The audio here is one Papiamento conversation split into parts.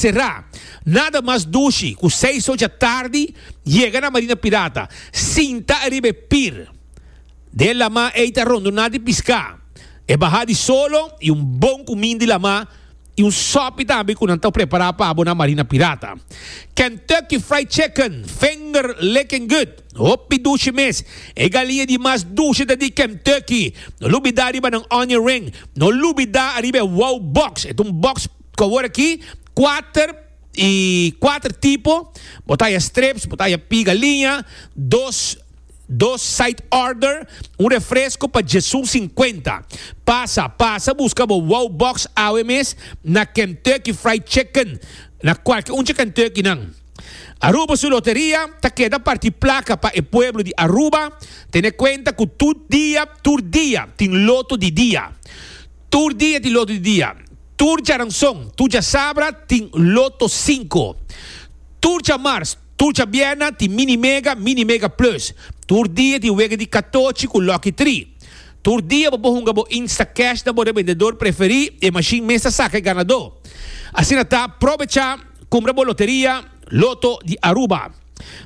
Será, nada mas dushi ku seis ocha tardi yega na Marina Pirata, sinta ariba e pir di e lamá ei ta rondoná di piská, e bahá di solo i un bon kumin di lamá i un sòpi tambe ku nan ta prepará pa bo na Marina Pirata. Kentucky Fried Chicken, finger licking good, hopi dushi mes. E galiña di mas dushi ta di Kentucky. No lubidá riba nan onion ring. No lubidá ariba e wow box, e ta un box Cu awor aki cuater y cuater tipo, bo ta haya strips, bo ta haya piga liña, dos, dos side order, un refresco pa djesun cincuenta. Pasa, pasa busca bo Wow Box awe mes na Kentucky Fried Chicken, na cualke un dje Kentuckynan. Aruba su loteria ta keda parti placa pa e pueblo di Aruba, tene cuenta cu tur dia, tur dia tin loto di dia. Tur dia tin loto di dia. Tur djaranson, tur djasabra tin loto sinku. Tur djamars, tur djabièrna tin mini mega, mini mega plus. Tur dia tin wega di katochi ku lòki tri. Tur dia bo por hunga bo Instacash na bo rebendedor preferí i e mashin mes ta saka e ganadó. Asina ta, probecha kumbra bo loteria Loto di Aruba.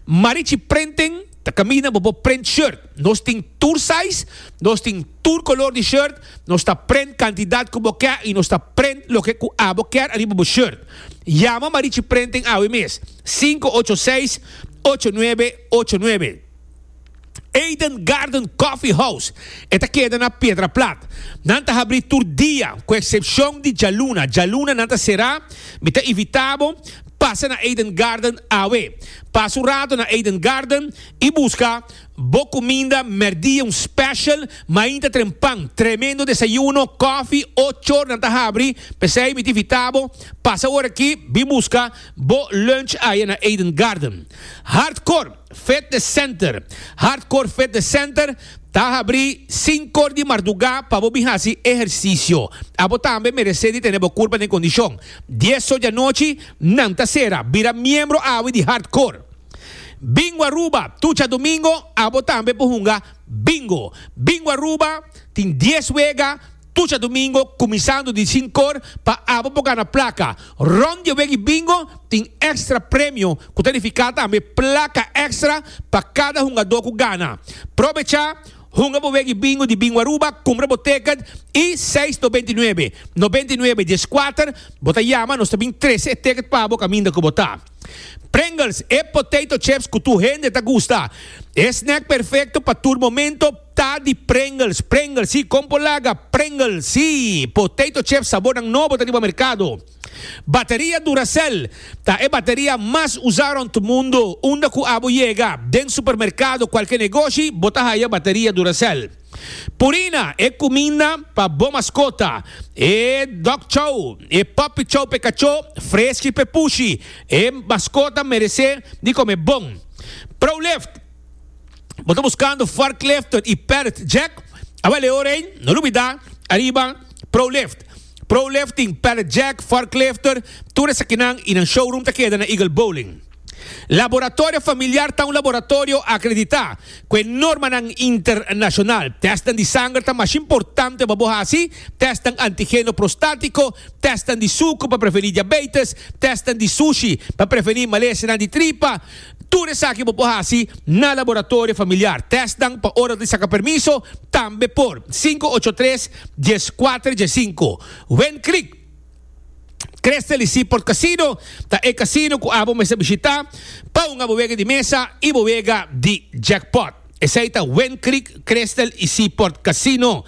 Marichi Printen ta caminda bo bo print shirt. Nos tin tur size, nos tin tur color di shirt, nos ta print cantidad cu bo ke y nos ta print loke cu abo kier ariba bo shirt. Yama Marichi Printen awe mes, cinco ocho seis, ocho nuebe ocho nuebe. Eden Garden Coffee House, e ta keda na Piedra Plat. Nan ta habrí tur dia, ku eksepshon di djaluna. Djaluna nan ta será. Mi ta invitá bo pasa na Eden Garden awe. Pasa un rato na Eden Garden i buska bo kuminda mèrdia, un special mainta tren pan, tremendo desayuno, kòfi, ochor nan ta habrí. P'esei mi ta invitá bo pasa ora akí, bin buska bo lunch aya na Eden Garden. Hardcore. Fitness Center. Hardcore Fitness Center ta habrí sinkor di mardugá pa bo bin hasi ehersisio. Abo tambe meresé di tene bo kurpa den kondishon. Diesor di anochi nan ta sera. Bira miembro awe di Hardcore. Bingo Aruba. Tucha domingo abo tambe por hunga Bingo. Bingo Aruba tin dies wega. Tucha domingo kuminsando di sinkor pa abo por gana plaka. Rond di e weki bingo tin èkstra premio ku ta nifiká tambe plaka èkstra pa kada hungadó ku gana. Probechá, hunga bo weki bingo di Bingo Aruba, kumpra bo tèkèt i seis no binti nuebe, no binti nuebe dies kuater, bo ta yama nos ta bin trese e tèkèt pa bo kaminda ku bo ta. Pringles, e potato chips ku tur hende ta gusta. E snèk perfekto pa tur momento. Ta di Pringles, Pringles si, kon por laga? Pringles si, potato chips sabornan nobo ta riba merkado. Bateria Duracell ta e bateria mas usa rond mundo, unda ku abo yega den supermerkado, kualke negoshi, bo ta haya bateria Duracell. Purina, e kuminda pa bo maskota, e dog chow, e puppy chow p'e kachó, freski p'e pushi, e maskota merese di kome bon. Prolift. Bo ta buskando forklifter y pallet jack? Aba Leo Rey, no lo bida ariba Prolift. Prolift tin pallet jack, forklifter, tur esakinan y nan showroom ta keda na Eagle Bowling. Laboratorio Familiar ta un laboratorio akreditá ku e normanan internashonal. Tèstnan di sanger ta masha importante pa bo hasi, tèstnan antigeno prostátiko, tèstnan di suku pa prevení diabeites, tèstnan di sushi pa prevení malesenan di tripa, Tur esaki bo por hasi na Laboratorio Familiar. Tèstnan pa ora di saka permiso tambe por, sinku ocho tres, dies kuater, dies sinku. Wind Creek Cresteli Seaport Casino ta e casino ku abo mester bishitá pa hunga bo wega di mesa i bo wega di jackpot. Esei ta Wind Creek, Crystal i Seaport Casino.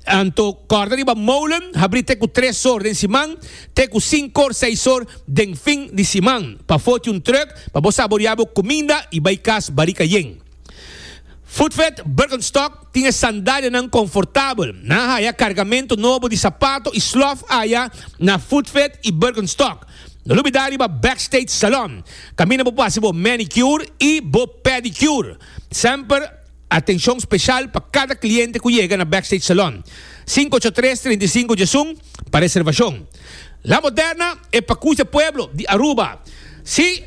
Anto kòrda riba Molen habrí te ku tres or den siman te ku sinkor, seis or den fin di siman pa foti un trùk pa bo saboriá bo kuminda i bai kas barika yen. Footfed Birkenstock tin e sandalianan konfortabel. Nan haya kargamentu nobo di sapato i slòf aya na Footfed i Birkenstock. No lubida riba Backstage Salon, kaminda bo por hasi bo manicure i bo pedicure. Semper atenshon speshal pa kada kliente ku yega na Backstage Salon. Sinku ocho tres, trinta i sinku dje sun pa reservashon. La Moderna e pakus di pueblo di Aruba. Si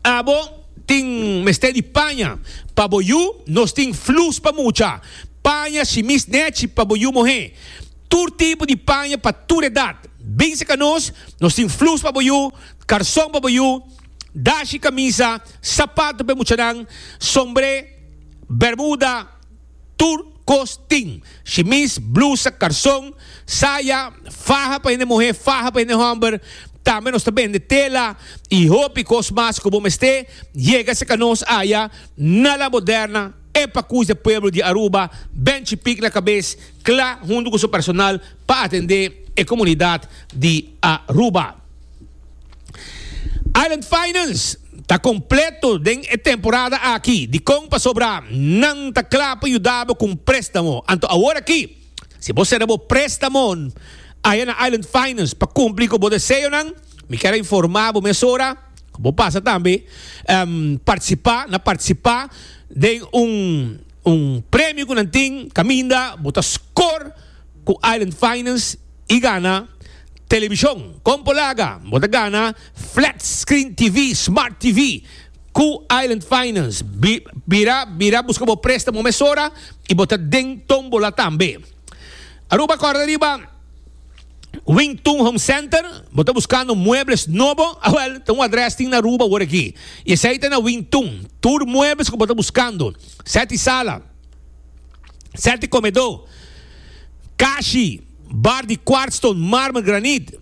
abo tin mester di paña pa bo yu, nos tin flus pa mucha. Paña shimis nechi pa bo yu mohé. Tur tipo di paña pa tur edat. Binse ka nos, nos tin flus pa bo yu, karson pa bo yu, dashi, kamisa, sapato p'e muchanan, sombré, bermuda, tur kos tin, shimis, blusa, karson, saya, faha pa hende muhé, faha pa hende hòmber, tambe nos ta bende tela i hopi kos mas ku bo mest'é, yégase ka nos aya na La Moderna, e pakus di e pueblo di Aruba, Ben Chipik na kabes. Kla huntu ku su personal pa atendé e komunidat di Aruba. Island Finance ta kompleto den e temporada aki. Dikon pasobra nan ta kla pa yuda bo ku un préstamo? Anto aworakí, si bo sera bo préstamon aya na Island Finance pa kumpli ku bo deseonan, mi kier a informá bo mesora ku bo pasa tambe partisipá na partisipá den un. Un premio cu nan tin caminda bo ta scor cu Island Finance y gana television. Con por laga? Bo ta gana Flat Screen TV, Smart TV, cu Island Finance. Bira bira busca bo prestamo mesora y bo ta den tombola tambe. Aruba corda riba! Wing Tun Home Center, bo ta buscando muebles nobo? A wel, ta un adres tin na Aruba awor aki. Y esey ta na Wing Tun. Tur muebles cu bo ta buscando, seti sala, seti comedo, cashi, bar di kwartston, marmer, granit,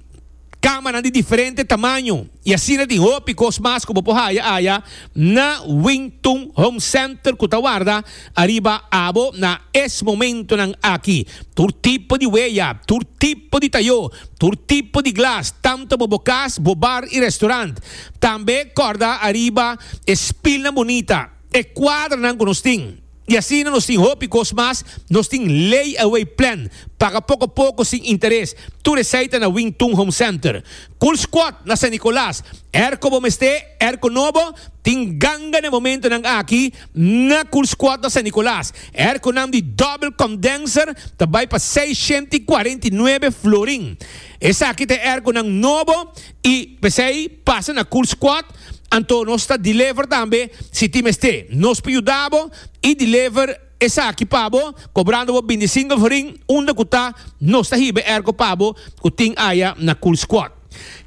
camanan di diferente tamaño y asina tin hopi cos mas cu bo por haya aya na Wing Tun Home Center cu ta warda Ariba abo, na es momentonan aki, tur tipo di weya, tur tipo di tayó, tur tipo di glas, tantu bo bo kas, bo bar i restaurant. Tambe kòrda ariba e spilnan bunita, e kuadranan ku nos tin. I asina nos tin hopi kos mas, nos tin lay-away plan, paga poko poko sin interes, tur esei ta na Wing Tun Home Center. Cool Squad na San Nicolas, er ku bo mester, er ku no bo, tin ganga na e momentonan aki, Na Kulskuadra San Nikolaas, èrkonan di dòbel kondenser ta bai pa seishenta i kuarenta i nuebe florin. Esaki ta e èrkonan nobo i p'esei pasa na Kulskuad, anto nos ta deliver tambe si tin mester. Nos por yuda bo i deliver esaki pa bo kobrando bo binti single florin unda ku ta, nos ta hiba e èrko pa bo ku tin aya na Kulskuad.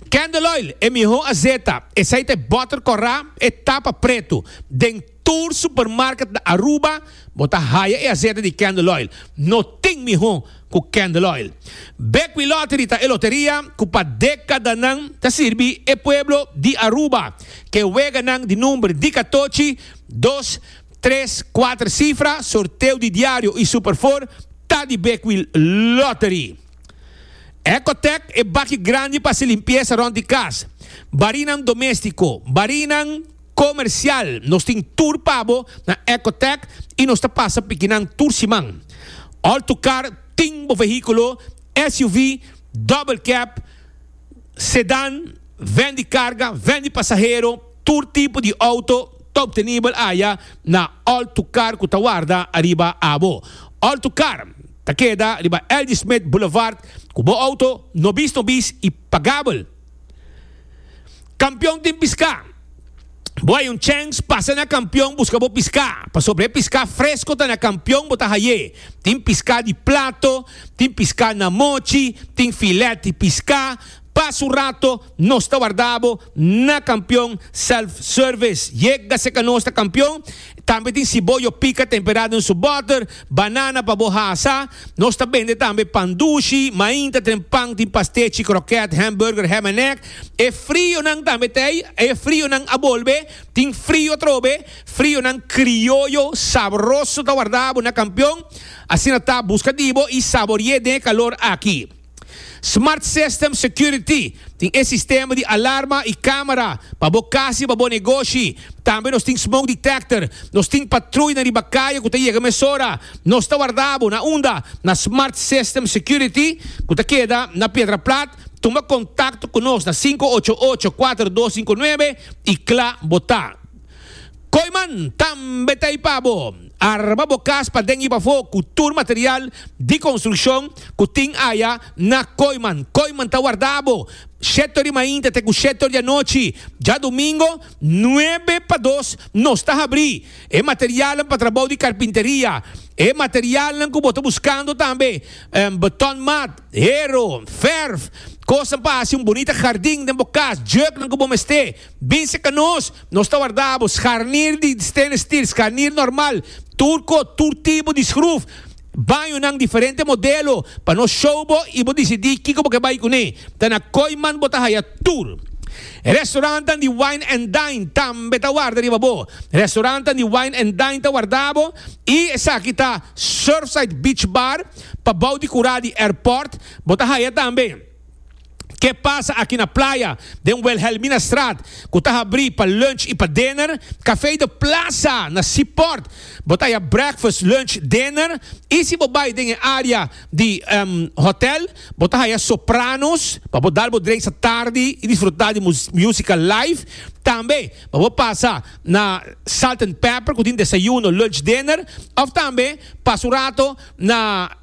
Candle oil, e miho azeta, esei ta e butter corra, e tapa pretu. Den tur supermarket na Aruba bo ta haya e azeta di Candle oil. No tin miho cu Candle oil. Bequi Lottery ta e loteria cu pa decadanan ta sirbi e pueblo di Aruba. Ke weganan di number di catochi, dos, tres, cuater cifra, sorteo di diario y Super Four ta di Bequi Lottery. Ecotec e baki grandi pa hasi limpiesa rond di cas. Barinan domestico, barinan comercial, nos tin tur pa bo na Ecotec y nos ta pasa pikinan tur siman. All tu car tin bo vehiculo, SUV, double cab, sedan, ven di carga, ven di pasahero, tur tipo di auto ta obtenibel aya na All tu car cu ta warda ariba abo. All tu car. ta keda riba L.G. Smith Boulevard ku bo outo no bis no bis i pagabel. Kampion tin piská. Bo hay un chèns pasa na kampion buska bo piská, pasobra e piská fresko ta na kampion bo ta hay'é. Tin piská di plato, tin piská na mochi, tin filèt di piská. Pas un rato, Nos ta warda bo na Kampion Self Service. Yega seka nos ta Kampion. Tambe tin siboyo pika temperado den su boter, banana pa bo hasa. Nos ta bende tambe pan dushi, mainta, tren pan, tin pastechi, kroket, hamburger, ham en egg. E frionan tambe ta ei. E frionan a bolbe. Tin frio atrobe. Frionan krioyo sabroso ta warda bo na Kampion. Asina ta, buska di bo i sabori'é den e kalor aki. Smart System Security, tin e sistema di alarma y camera pa bo cas y pa bo negoshi. Tambe nos tin Smoke Detector. Nos tin patruinan riba caye cu ta yega mesora. Nos ta warda bo na unda? Na Smart System Security cu ta keda na Piedra Plat. Tuma contacto cu nos na sinku ocho ocho, kuater dos sinku nuebe y cla bo ta. Koiman tambe ta ipa bo. Arma bo kas paden i pafó ku tur material di konstrukshon ku tin aya na Koiman. Koiman ta warda bo shetor di mainta te ku shetor di anochi. Djadumingo nuebe pa dos nos ta habrí e materialnan pa trabou di karpinteria. E materialnan ku bo ta buskando tambe beton mat, hero, verf, kosnan pa hasi un bunita hardin den bo kas, jèknan ku bo mester. Bin seca nos, nos ta warda bo scharnier di stainless steel, scharnier normal, turco, tur tipo di schroef, bañonan diferente modelo, pa nos show bo y bo dicidi kico bo ke bay cune. Ta na Kooiman bo ta haya tur. Restaurantnan di Wine and Dine tambe ta warda riba bo. Restaurantnan di Wine and Dine ta warda bo y esaki ta Surfside Beach Bar, pa bou di cura di airport, bo ta haya tambe. Ke pasa aki na playa, den Wilhelminastraat, ku ta habrí pa lunch i pa dinner, Café de Plaza na Seaport, bo ta haya breakfast, lunch, dinner, i si bo bai den e área di hòtel, bo ta haya Sopranos pa bo dal bo drensa tardi i disfrutá di músika live. Tambe pa bo pasa na Salt and Pepper ku tin desayuno, lunch, dinner, òf tambe pasa un rato na.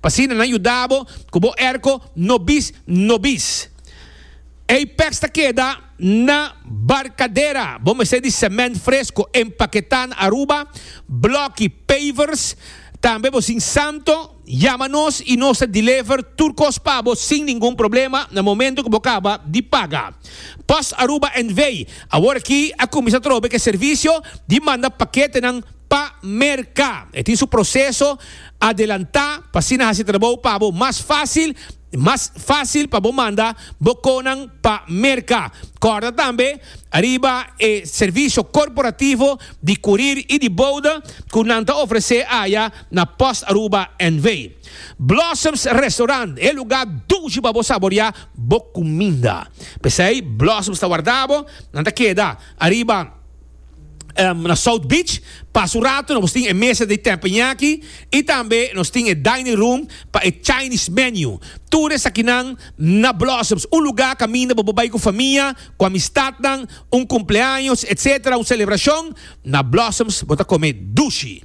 Pa asina nan yuda bo ku bo erko no bis no bis. Ei pèks ta keda na barkadera. Bo mester di semènt fresko empaketá na Aruba, blòki, pavers. Tambe bo sin santo, yama nos i nos ta deliver tur kos pa bo sin ningun problema na momentu ku bo kaba di paga. Post Aruba NV. Awor aki a kuminsá trobe ku e servisio di manda paketenan pa Merka. E tin su proseso. adelantá pa asina hasi trabou pa bo mas fásil i mas fásil pa bo manda bo konan pa merka. Kòrda tambe ariba e servisio korporativo di kurir i di bouda ku nan ta ofresé aya na Post Aruba NV. Blossoms Restaurant, e lugá dushi pa bo saboriá bo kuminda. P'esei Blossoms ta warda bo, nan ta keda ariba. na South Beach. Pas un rato nos tin e mesa di tempenyaki i tambe nos tin e dining room pa e Chinese menu. Tur esakinan na Blossoms, un lugá kaminda bo por bai ku famia, ku amistatnan, un kumpleaños, etc. Un selebrashon. Na Blossoms bo ta kome dushi.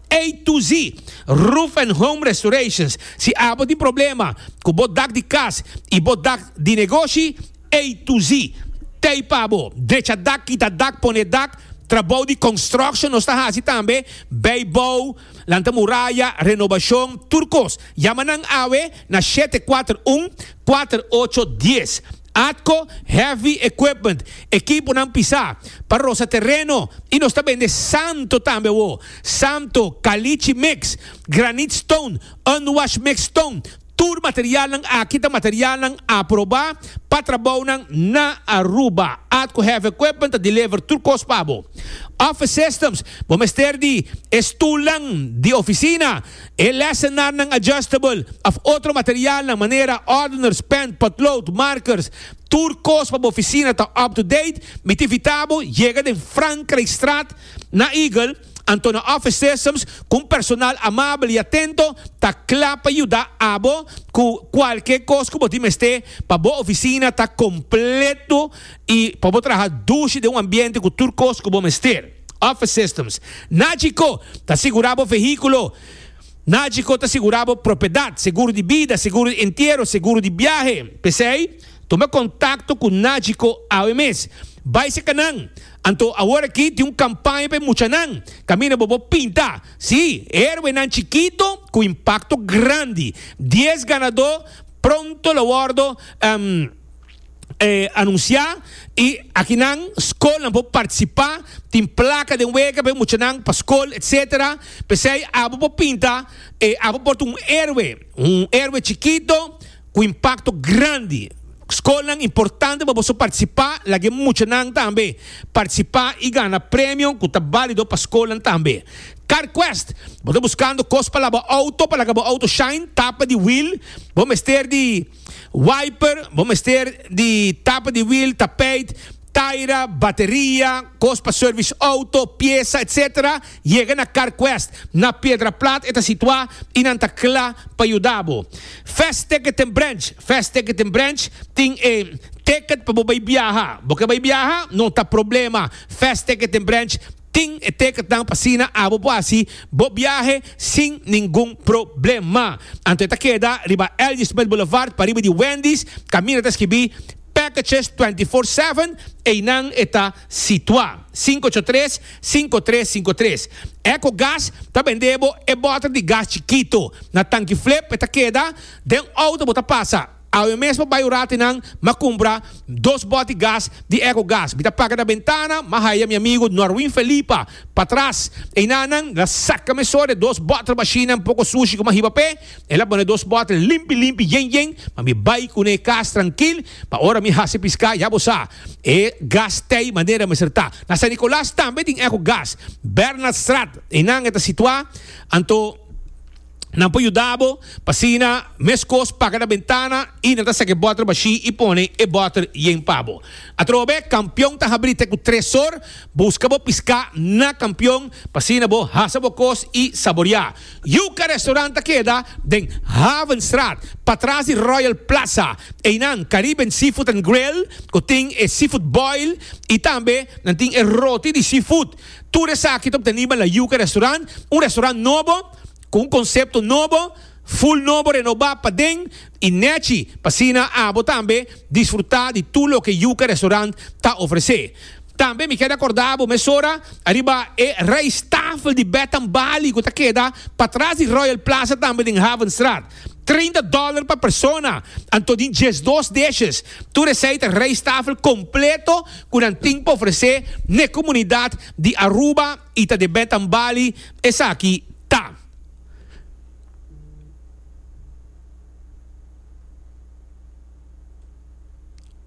A to Z, Roof and Home Restorations, Si abo tin problema ku bo dak di kas i bo dak di negoshi, A to Z ta ei pa bo. Drecha dak, kita dak, pone dak, trabou di construction nos ta hasi tambe, bay bou, lanta muraya, renobashon, tur kos. Yama nan awe na shete kuater un, kuater ocho dies. Atco heavy equipment, ekiponan pisá, pa rosa tereno y nos ta bende santo tambe awo, santo, caliche mix, granite stone, unwashed mixed stone, tur materialnan aki ta materialnan aprobá pa trabounan na Aruba. Atco Heavy Equipment ta deliver tur cos pa bo. Office Systems, bo mester di e stulnan di oficina, E lesenarnan adjustable of otro materialnan manera ordeners, pen, potlood, markers, tur kos pa bo oficina ta up to date, mi ta invita bo yega den Frankrijkstraat na Eagle, Antono Office Systems cu un personal amabel y atento ta cla pa yuda abo cu cualkier cos cu bo tin mester pa bo oficina ta completo y pa bo traha dushi den un ambiente cu tur cos cu bo mester. Office Systems. Nagico ta sigurá bo vehíkulo. Nagico ta sigurá bo propiedat, seguro di bida, seguro di entiero, seguro di biahe. P'esei, tuma kontakto ku Nagico awe mes. Bai serka nan. Anto aworakí tin un kampaña pa e muchanan. Kaminda bo por pinta, sí, herwenan chikito ku impakto grandi. Dies ganadó pronto lo wòrdu. anuncia y aki nan school nan por participa tin placa den wega p'e muchanan pa school etcetera pesey abo por pinta abo por ta un heroe un heroe chikito cu impacto grandi school nan importante pa boso participa lagu'e muchanan tambe participa y gana premio cu ta balido pa school nan tambe car quest bo ta buscando cos pa laba auto pa laga bo auto shine tapa di wheel bo mester di. Wiper, bo mester di tapa di wiel, tapijt, taira, bateria, kos pa service auto, piesa, etc. Yega na CarQuest na Piedraplat e ta situa y nan ta cla pa yuda bo. Fast Ticket en Branch, Fast Ticket en Branch tin e ticket pa bo bay biaha. Bo ke bay biaha? No ta problema, Fast Ticket en Branch Tin e tekentnan pa asina abo bo hasi bo biahe sin ningun problema. Anto e ta keda riba Ladysmith Boulevard pariba di Wendy's, kaminda ta skibí Packages Twenty Four Seven, einan e ta situá. Sinku ocho tres, sinku tres sinku tres. Echo Gas ta bende bo e bòter di gas chikitu. Na tanki flip e ta keda den outo bo ta pasa. Awe mesmo bai ora te nan ma cumpra dos boti gas di eco gas. Mi ta paga na bentana ma haya mi amigo Norwin Felipa patras. Eynan nan la saca meso de dos bottle machina un poco sushi cu ma hiba p'e. E la pone dos bottle limpi limpi yen yen ma mi bai cu n'e cas trankil pa ora mi haci pisca ya bo sa e gas t'ey manera mester ta. Na San Nicolas tambe tin eco gas. Bernaldstraat eynan e ta situa anto. Nan por yuda bo pa asina meskos paga na bentana i nan ta saka e bòter bashí i pone e bòter yen pa bo. Atrobe, kampion ta habrí te ku tresor. Buska bo piská na kampion pa asina bo hasa bo kos i saboriá. Yuka Restaurant ta keda den Havenstraat, patras di Royal Plaza. Einan Caribbean Seafood and Grill ku tin e seafood boil i tambe nan tin e roti di seafood. Tur esaki ta obteni banda Yuka Restaurant, un restaurant nobo. cu un concepto nobo, full nobo renoba paden y nechi p'asina abo tambe disfruta di tur loke Yuca Restaurant ta ofrece. Tambe mi keda corda abo mesora ariba e rijsttafel di Bed and Bali cu ta keda patras di Royal Plaza tambe den Havenstraat. Trinta dollar pa persona, anto di diesdos dishes. Tur esey ta rijsttafel completo cu nan tin p'ofrece n'e comunidad di Aruba. y ta de betan bali esaki ta.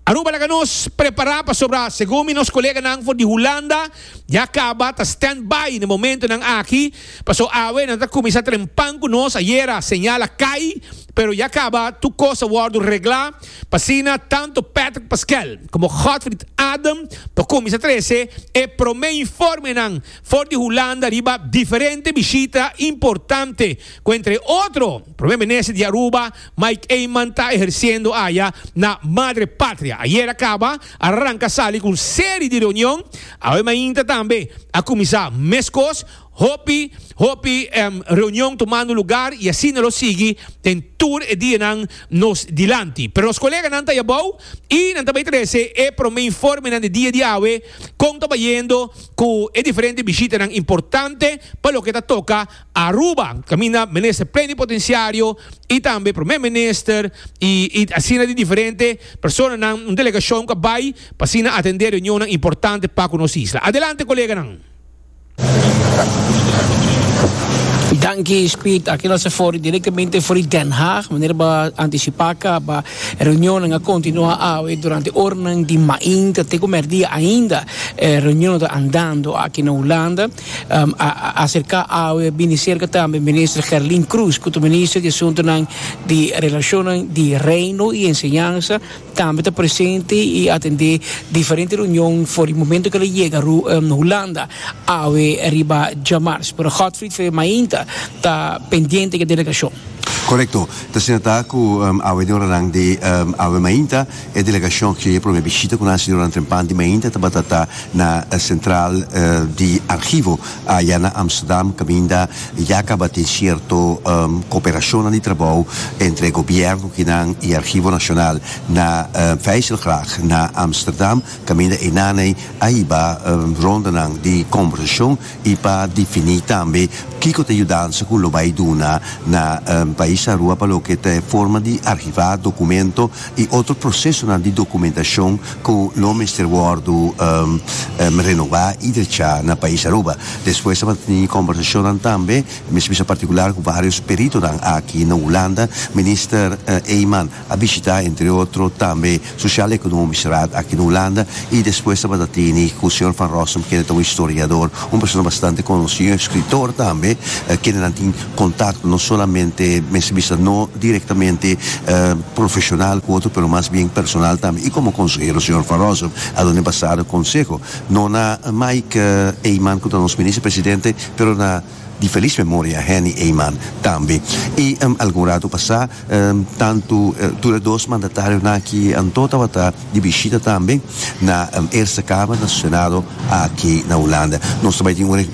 Aruba laga nos prepara pasobra segun mi nos coleganan for di Hulanda ya caba ta stand by na momentonan aki paso awe nan ta cuminsa trempan cu nos ayera señal a cay Pero ya kaba tur kos a wòrdu reglá pa asina tantu Patrick Pasquel komo Godfried Adam por kuminsá trese e promé informenan for di Hulanda riba diferente bishita importante ku entre otro Promé Minister di Aruba, Mike Eman ta ehersiendo aya na Madre Patria. Ayera kaba a ranka sali ku un seri di reunion, awe mainta tambe a kuminsá meskos. Hopi, hopi reunion tumando lugar y asina lo sigui den tur e dianan nos dilanti. Pero nos coleganan ta abao y nan ta bay trece e prome informenan di dia di awe con ta bayendo cu e diferente bishitanan importante pa loke ta toca Aruba, caminda Minister Plenipotenciario y tambe Prome Minister y asina di diferente personanan, un delegacion cu a bay pa asina atende reunionnan importante pa cu nos isla. Adelante coleganan! Danki Speed, aki nos for directamente for di Den Haag. Meneer ba anticipa ka ba reunionen a continua awe durante ornan di maint te ku merdia ainda eh, reunionen ta andando aki na Hulanda. Um, a, a acerca awe bini cerca tambe minister Gerlin Cruz, ku ta minister di asuntonan di relacionen di Reino y Enseñanza. Tambe ta presente y atende diferente reunion for di momento cu el a yega Hulanda awe riba dja mars. Pero Godfried Febe mainta ta pendiente cu e delegacion. Corecto, ta siñatá cu awe di oranan di awe mainta e delegacion hicié e prome bishita cu nan señora Trempan di mainta tabata ta na central di archivo aya na Amsterdam caminda Ya caba tin cierto cooperacionnan di trabou entre gobierno kinan y Archivo Nacional na Vijzelgracht na Amsterdam. Caminda einan ei a hiba rondanan di conversacion y pa defini tambe kico ta e yudansa cu lo bay duna na Pais Aruba pa loke ta e forma di archiva documento y otro procesonan di documentacion cu lo mester wordo renoba y drecha na pais Aruba. Despues ta manteni conversacionnan tambe mes bisa particular cu varios peritonan aki na Hulanda. Minister Eijman a bishita entre otro tambe Sociaal Economisch Raad aki na Hulanda y despues tabata tini cu señor Van Rossum kende ta un historiador, un persona bastante conoci, un escritor tambe, kendenan tin Contact no solamente mester bisa no directamente profesional cu otro pero mas bien personal tambe y como consehero señor Van Rossum a done bastante conseho no na Mike Eman cu ta nos Minister Presidente pero na di feliz memoria Henny Eman tambe y algun rato pasa Tantu tur e dos mandatarionan aki anto tabata di bishita tambe na Eerste Kamer, na su Senado aki na Hulanda. Nos ta bai tin un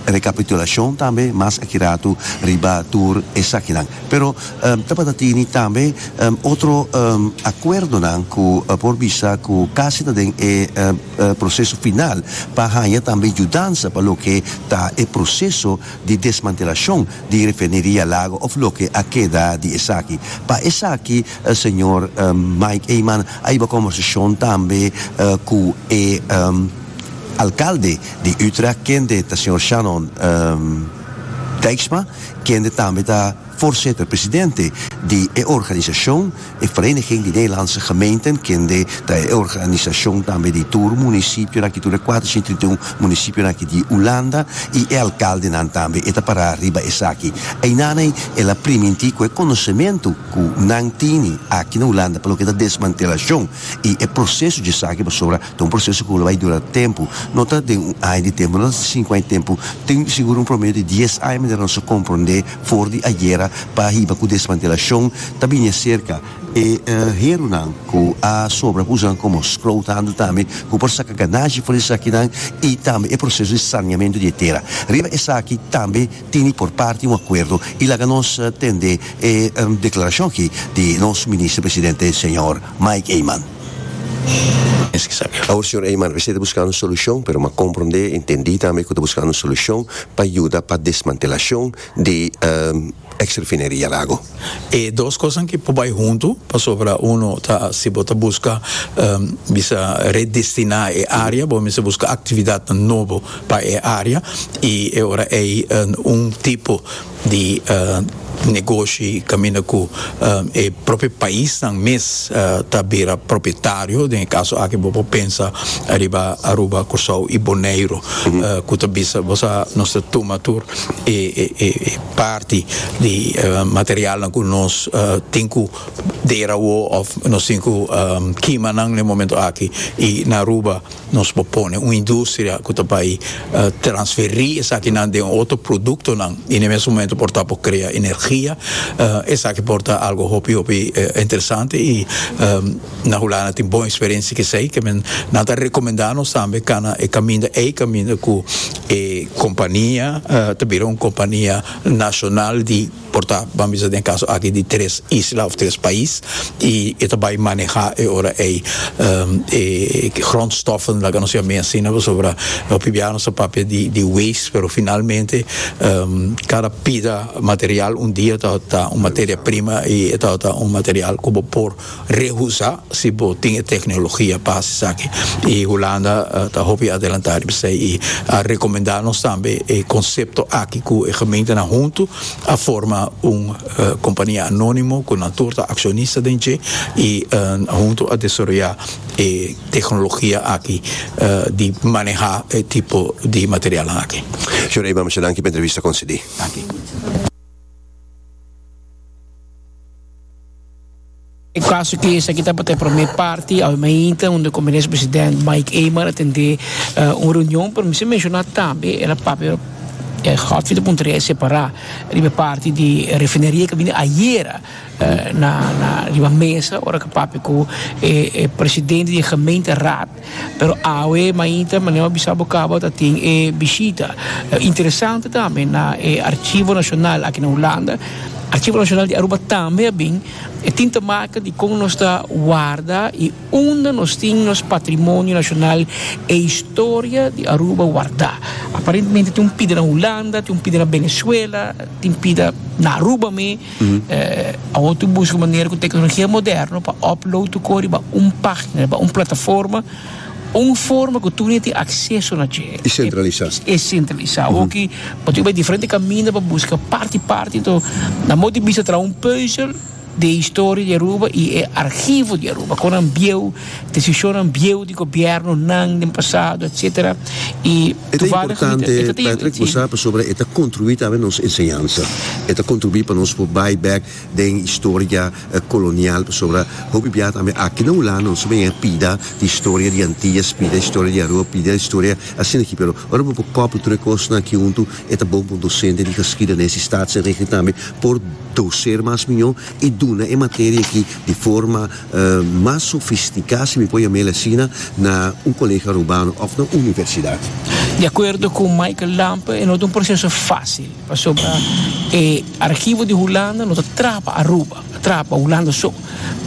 rekapitulashon tambe mas aki ratu riba tur esakinan. Pero tabata tini tambe otro akuerdonan ku por bisa ku kasi ta den e proseso final pa haña tambe yudansa pa loke ta e proseso di desmantelashon di Refineria Lago of loke a keda di esaki. Pa esaki señor Mike Eman a hiba conversashon tambe cu e Alcalde di Utrecht kende ta señor Shannon Dijksma kende tambe ta Voorzitter, Presidente, di e organisashon, e Vereniging di Nederlandse Gemeenten, kende ta e organisashon tambe di tur munisipionan aki, tur e kuatrociento trinta i un munisipionan aki di Hulanda, i e alkaldenan tambe, e ta pará riba esaki. Einanei el a primintí ku e konosementu ku nan tini aki na Hulanda pa loke ta desmantelashon i e proseso dje esaki pasobra Ta un proseso ku lo bai dura tempu. No ta den un aña di tempu, no ta sin ku hay tempu. Tin sigur un promedio di dies aña mester nos a komprondé for di ayera pa hiba ku desmantelashon ta bini a serka. E herunan ku a sobra ku usanan komo scrouthandel tambe ku por saka ganashi for di esakinan i tambe e proseso di saniamentu di e tera. Riba esaki tambe tin di por parti un akuerdo i laga nos tende e deklarashon aki di nos Minister Presidente señor Mike Eman. Awor, señor Eyman, esei ta buskando un solucion, pero m'a comprende, intendi tambe cu ta buskando un solucion pa yuda pa desmantelacion di ex refineria Lago. E dos cosnan ke por bay hunto, pasobra uno ta, si bo ta buska bisa redestina e area, bo mester buska actividadnan nobo pa e area y e ora ey un tipo, di negoshi kaminda ku e propio paisnan mes ta bira propietario den e kaso aki bo por pensa ariba Aruba Kòrsou i Boneiru ku ta bisa bo sa nos ta tuma tur e e parti di materialnan ku nos tin ku dera awo òf nos tin ku kima nan na e momento aki i na Aruba Nos por pone un industria cu ta bay transferi esakinan den otro productonan y n'e mes momento por ta por crea energia. Esaki por ta algo hopi hopi interesante y na Hulanda tin bon experiencia cu esey. Kende nan ta recomenda nos tambe cana e caminda ey, caminda cu e compania ta bira un compania nacional di. Por ta, ban bisa den e kaso aki di tres isla of tres pais y e ta bay maneha e ora ey e grondstoffen laga nos yame asina pasobra hopi bia nos ta papia di waste pero finalmente cada pida material un dia tabata un materia prima y e tabata un material cu bo por Rehusa si bo tin e tecnologia pa haci esaki y Hulanda ta hopi adelanta riba esey y a recomenda nos tambe e concepto aki cu e gementenan hunto a forma un compania anonimo cu nan tur ta accionista den dje y hunto a desaroya e tecnologia aki di maneha e tipo di materialnan aki. Señor Eman, mucha danki pa e entrevista concedi. Danki. E kaso ki esaki tabata e promé parti awe mainta unda ku Minister Presidente Mike Eman a tende un reunion, pero mester menshoná tambe el a papia e hotfit a puntra riba e separá riba e parti di refineria ku a bini ayera na riba mesa ora ku a papia ku e presidente di e Gemeenteraad. Pero awe mainta, manera bo a bisa bo kaba, ta tin e bishita interesante tambe na e Archivo Nacional aki na Hulanda. Archivo Nacional di Aruba tambe a bin. E tin ta maka di kon nos ta warda i unda nos tin nos patrimonio nacional, e historia di Aruba wardá. Aparentemente tin un pida na Hulanda, tin un pida na Venezuela, tin pida na Aruba me. Awor tin buska manera ku teknologia moderno pa upload tu ko riba un pagina, riba un plataforma, un forma ku tur hende tin akseso na dje. E sentralisá. E sentralisá. Awor ki bo tin ku bai diferente kaminda pa buska parti parti. Enton, na mo di bista traha un puzzel di e historia di Aruba i e arhivo di Aruba. Kon nan bieu, desishonnan bieu di gobièrnunan den pasado, etsetera, i. E ta importante, Patrick, bo sa, pasobra e ta kontribuí tambe nos enseñansa. E ta kontribuí pa nos por bai bèk den historia kolonial, pasobra hopi bia tambe aki na Hulanda nos ta bini a pida di historia di Antillas, pida historia di Aruba, pida historia asina aki. Pero ora bo por kòpia tur e kosnan aki huntu, e ta bon pa un dosente di Geschidenis di Staatsenrichting tambe por doseer mas mió i duna e materia aki di forma. mas sofisticá, si mi por yam'el asina, na un colega Arubano of na universidad. Di acuerdo cu Michael Lampe e no ta un proceso facil pasobra e archivo di Hulanda no ta traha pa Aruba, ta traha pa Hulanda so.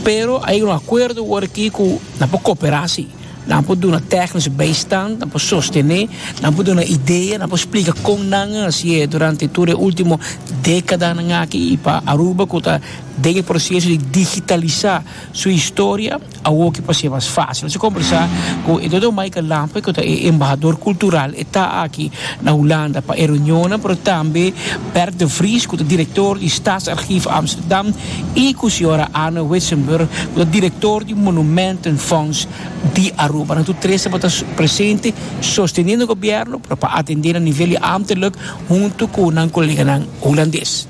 Pero a yega un acuerdo awor aki cu nan por cooperá sí. Nan por duna tecnisch bijstand, nan por sostené, nan por duna idea, nan por splica con nan a haci'e durante tur e ultimo decadanan aki y pa Aruba cu ta Den e proseso di digitalisá su historia, awor ke por ser mas fásil. Nos a kombersá ku e Dr. Michael Lampe, ku ta e embahador kultural. E ta aki na Hulanda pa e reunionnan, pero tambe Bert de Vries, ku ta direktor di Staatsarchief Amsterdam, i ku señora Anne Witsenburg, ku ta direktor di Monumentenfonds di Aruba. Nan tur tres tabata presente sosteniendo gobierno, pero pa atendé na nivel di ámterlijk huntu ku nan koleganan hulandes.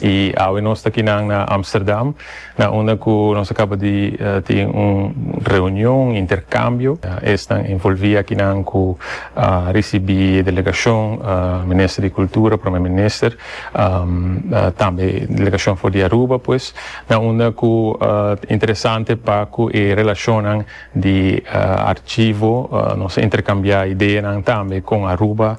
Y awe nos ta kinan na Amsterdam, na unda cu nos a caba di tin un reunion, intercambio. Esnan envolvi akinan cu a ricibi e delegacion, Minister di Cultura, Prome Minister, tambe delegacion for di Aruba, pues, na unda cu ta interesante pa cu e relacionnan di Archivo nos a intercambia ideanan tambe con Aruba,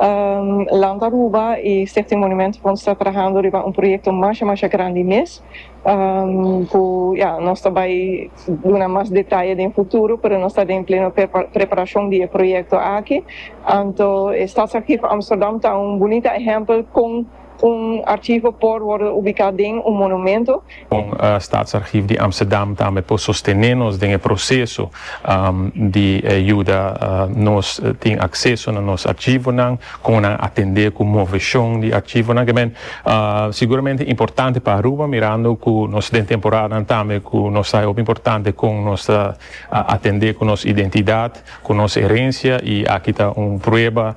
Land Aruba y Stichting Monument Fonds ta trahando riba un proyecto masha masha grandi mes cu ya nos ta bay duna mas detaye den futuro pero nos ta den pleno preparacion di e proyecto aki anto e Stadsarchief Amsterdam ta un bunita ehempel con Un archivo por wordo ubicá den un monumento. Con Staatsarchief di Amsterdam tambe por sostené nos den e proceso di yuda nos tin acceso na nos archivonan, como nan atendé cu movecion di archivonan. K'e men seguramente importante pa Aruba, mirando cu nos den temporadan tambe cu nos ta e hopi importante con nos ta atendé cu nos identidad, cu nos herencia y aki ta un prueba.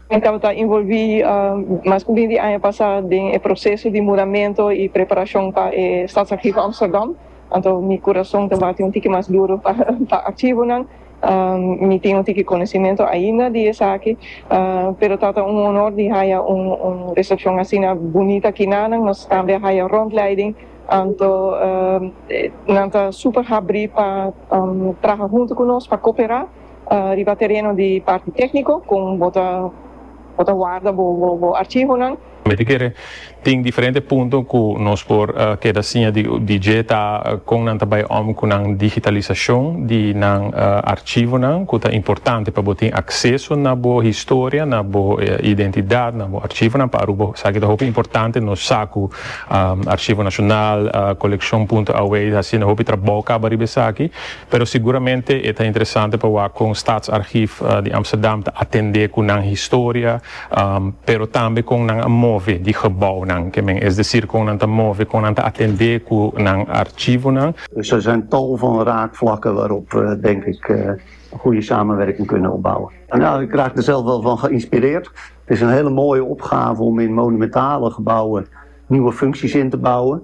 Mi tabata ta involvi mas cu bin di aña pasa den e proceso di muramento y preparacion pa e Stadsarchivo Amsterdam, anto mi curason ta bati un tiki mas duro pa archivonan. Mi tin un tiki conocimento ainda di esaki, pero tabata un honor di haya un recepcion asina bunita kinanan. Nos tambe a haya rondleiding, anto nan ta super habri pa traha hunto cu nos, pa copera. riba tereno di parti tékniko kon bo ta bo ta warda bo bo archivonan. Mi ta kere tin diferente punto ku nos por keda siña di di dje ta kon nan ta bai òm ku nan digitalisashon di nan archivonan ku ta importante pa bo tin akseso na bo historia na bo identidat na bo archivonan pa Aruba esaki ta hopi importante nos sa ku Arshivo Nashonal Kolekshon Punto Away ta haciendo hopi trabou kaba riba esaki. Pero siguramente e ta interesante pa wak kon Staatsarchief di Amsterdam ta atendé ku nan historia, pero tambe kon nan a move di gebounan ke men, es desir kon nan ta move, kon nan ta atendé ku nan archivonan. Dus er zijn tal van raakvlakken waarop we denk ik een goede samenwerking kunnen opbouwen. Ja, ik raak er zelf wel van geïnspireerd. Het is een hele mooie opgave om in monumentale gebouwen nieuwe functies in te bouwen.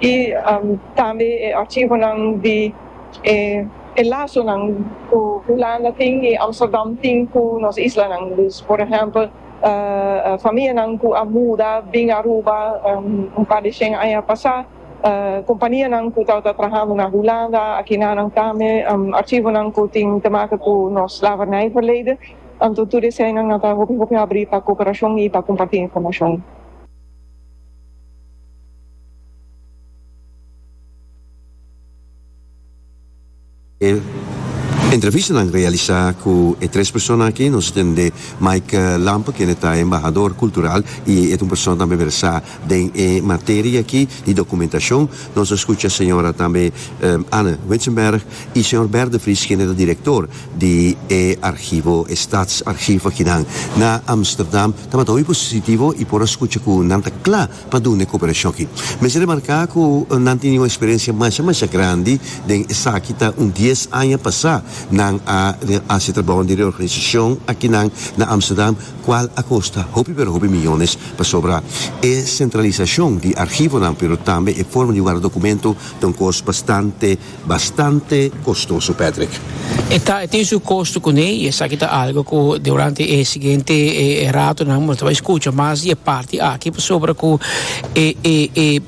y tambe e archivonan di e lasonan cu Hulanda tin y Amsterdam tin cu nos islanan, dus por ehempel famianan cu a muda bin Aruba un par di shen aña pasa, companianan cu tabata trahando na Hulanda, aki nanan tambe archivonan cu tin te maka cu nos slavernij verleden, anto tur eseinan nan ta hopi hopi habri pa cooperacion y pa comparti informacion. E entrevistanan realisa ku e tres persona aki nos tende Mike Lampe kende ta embahador kultural i e ta un persona tambe versá den e materia aki di dokumentashon. Nos a skucha señora tambe Anne Witsenberg i señor Bert de Vries kende ta direktor di e arhivo, e Statsarchief akinan na Amsterdam. Tabata hopi positivo i por a skucha ku nan ta kla pa duna e koperashon aki. Mester remarká ku nan tin un eksperensia masha masha grandi den esaki ta un dies aña pasá nan a hasi trabounan di reorganisashon aki nan na Amsterdam kual a kosta hopi pero hopi miyones pasobra e sentralisashon di arhivonan pero tambe e forma di warda dokumento ta un kos bastante Bastante kostoso, Patrick. E ta, e tin su kosto kuné i esaki ta algu ku durante e siguiente e e ratonan bo lo ta bai skucha mas di e parti aki pasobra ku e e e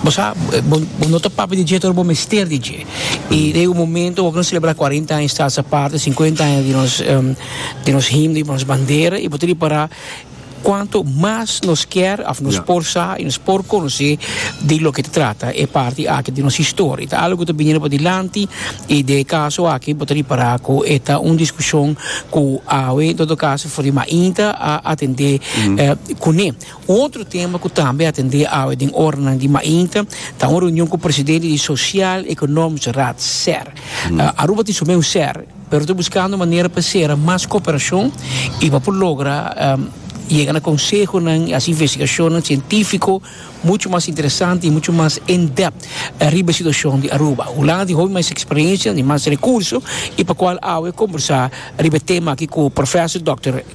bo sa bo bo no ta papia di dje pero bo mester di dje i ta e un momento bo kin selebrá cuarenta aña Staatse Parken, cincuenta aña di nos di nos himno i nos bandera i bo ta ripará. Cuanto mas nos kier of nos por sa y nos por conoci di loke ta trata e parti aki di nos historia. Ta algo cu ta biniendo padilanti y den e caso aki bo ta ripara cu e ta un discusion cu awe en todo caso for di mainta a atende cune. Otro tema cu tambe a atende awe den oranan di mainta ta un reunion cu presidente di Social Economisch Raad, ser. Aruba tin su meu ser. Pero ta buskando manera pa sera mas koperashon i pa por logra yega na konsehonan i hasi investigashonnan sientífiko muchu mas interesante i muchu mas in-depth riba e situashon di Aruba. Hulanda ta tin hopi mas eksperensia, ta tin mas rekurso i pa kual awe e kombersá riba e tema akí ku Profesor Dòkter.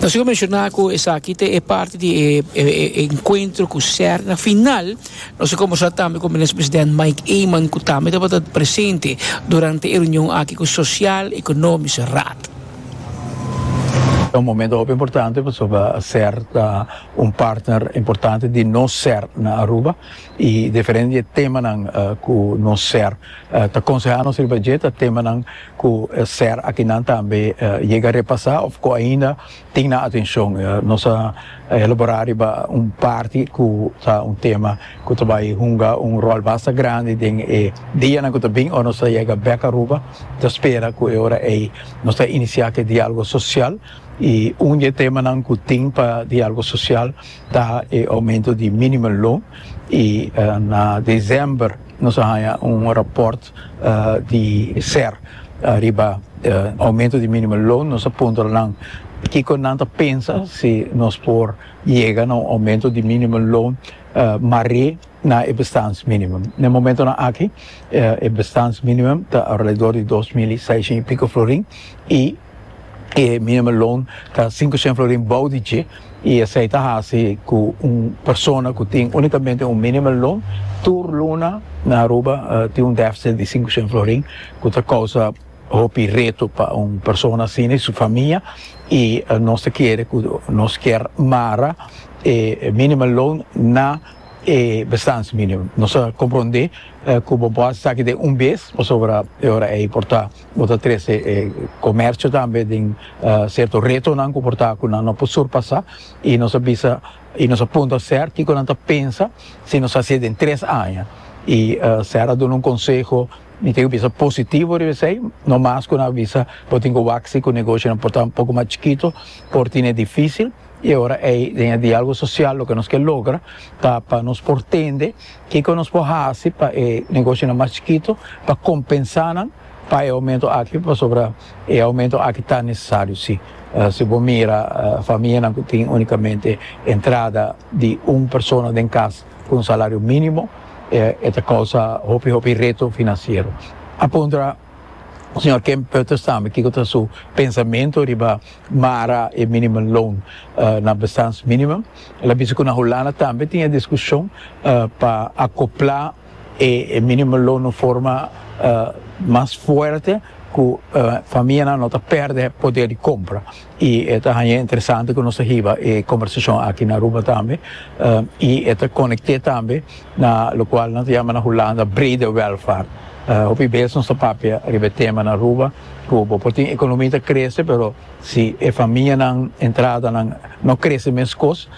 Nos tin cu menciona cu esaki ta e parti di e encuentro cu ser na final. Nos a conversa tambe cu Minister President Mike Eman cu tambe tabata presente durante e reunion aki cu Social Economische Raad. Un partner importante di nos ser na Aruba y diferente di e temanan cu nos ser ta conseha nos riba dje ta temanan cu ser akinan tambe yega repasa of cu ainda tin nan atencion. Nos a elabora riba un parti cu ta un tema cu ta bay hunga un rol basta grandi den e dianan cu ta bin ora nos ta yega bek Aruba. Nos ta spera cu e ora ey nos ta inicia cu e dialogo social. Y un di e temanan cu tin pa dialogo social ta e aumento di minimum loan y na december nos a haya un rapport di ser riba aumento di minimum loan, nos a puntra nan kico nan ta pensa si nos por yega na un aumento di minimum loan mar'e na e bestans minimum. Na e momentonan aki e bestans minimum ta alredor di dos mil i seiscientos y pico florin y. e minimum loan ta sinku shen florin bou di dje y esey ta haci cu un persona cu tin unicamente un minimum loan tur luna na Aruba tin un deficit di sinku shen florin cu ta causa hopi reto pa un persona asina y su famia y nos ta kere cu nos kier mara e minimum loan na e bestans minimum nos a comprende cu bo por haci esaki den un bes pasobra e ora ey por ta Bo ta trece e comercio tambe den cierto retonan cu por ta cu nan no por surpasa y nos a bisa y nos a puntra ser kico nan ta pensa si nos haci'e den tres aña y ser a duna un conseho mi tin cu bisa positivo riba esey no mas cu nan a bisa bo tin cu wak si cu negocionan por ta un poco mas chikito por tine dificil y aora ey den e dialogo social loke nos ke logra ta pa nos por tende Kiko nos por hasi pa e negosionan mas chikito pa kompensá nan pa e oumentu aki? Pasobra e oumentu aki ta nesesario, sí. Si bo mira famianan ku tin únikamente entrada di un persona den kas ku un salario mínimo, e ta kousa hopi hopi reto finansiero. A puntra. Señor Kempert ta sabe kiko ta su pensamentu riba mara e minimum loan na bestans minimum. El a bisa ku na Hulanda tambe tin e diskushon pa akoplá e minimum loan na un forma mas fuerte ku famianan no ta pèrdè poder di kompra. Y e ta haña interesante cu nos ta hiba e conversacion aki na Aruba tambe, y e ta conecte tambe na locual nan ta yama na Hulanda brede welvaart. Hopi bes nos ta papia riba e tema na Aruba cu bo por tin economia ta crece pero si e famianan entradanan no crece mescos,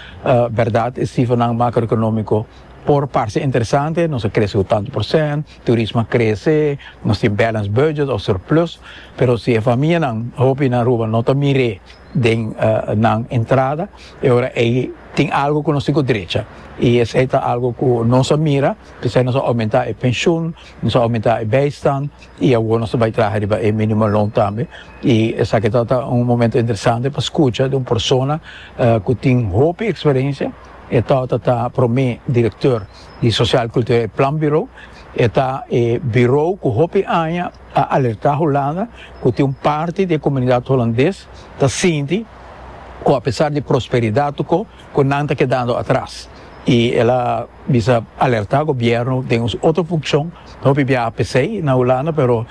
berdad e cifernan macroeconomico por parce interesante, nos a crece cu tantu procent, Turismo a krese, nos tin balance budget o surplus, pero si e famianan, hopi na Aruba, no ta mir'é den nan entrada, e ora ei tin algo ku nos tin ku drecha. I esei ta algo ku nos a mira, p'esei nos a oumentá e penshun, nos a oumentá e bijstand i awor nos ta bai traha riba e minimum loan tambe. I esaki ta ta un momento interesante pa skucha di un persona ku tin hopi eksperensia, e tabata ta promé direktor. Di Sosial Kulturel e Planbirou e ta e birou ku hopi aña a alertá Hulanda ku tin un parti di e komunidat Hulandes ta sinti ku apesar di prosperidat oko ku nan ta kedando atras i el a bisa alertá gobièrnu den un otro funkshon ta hopi biaha p'esei na Hulanda pero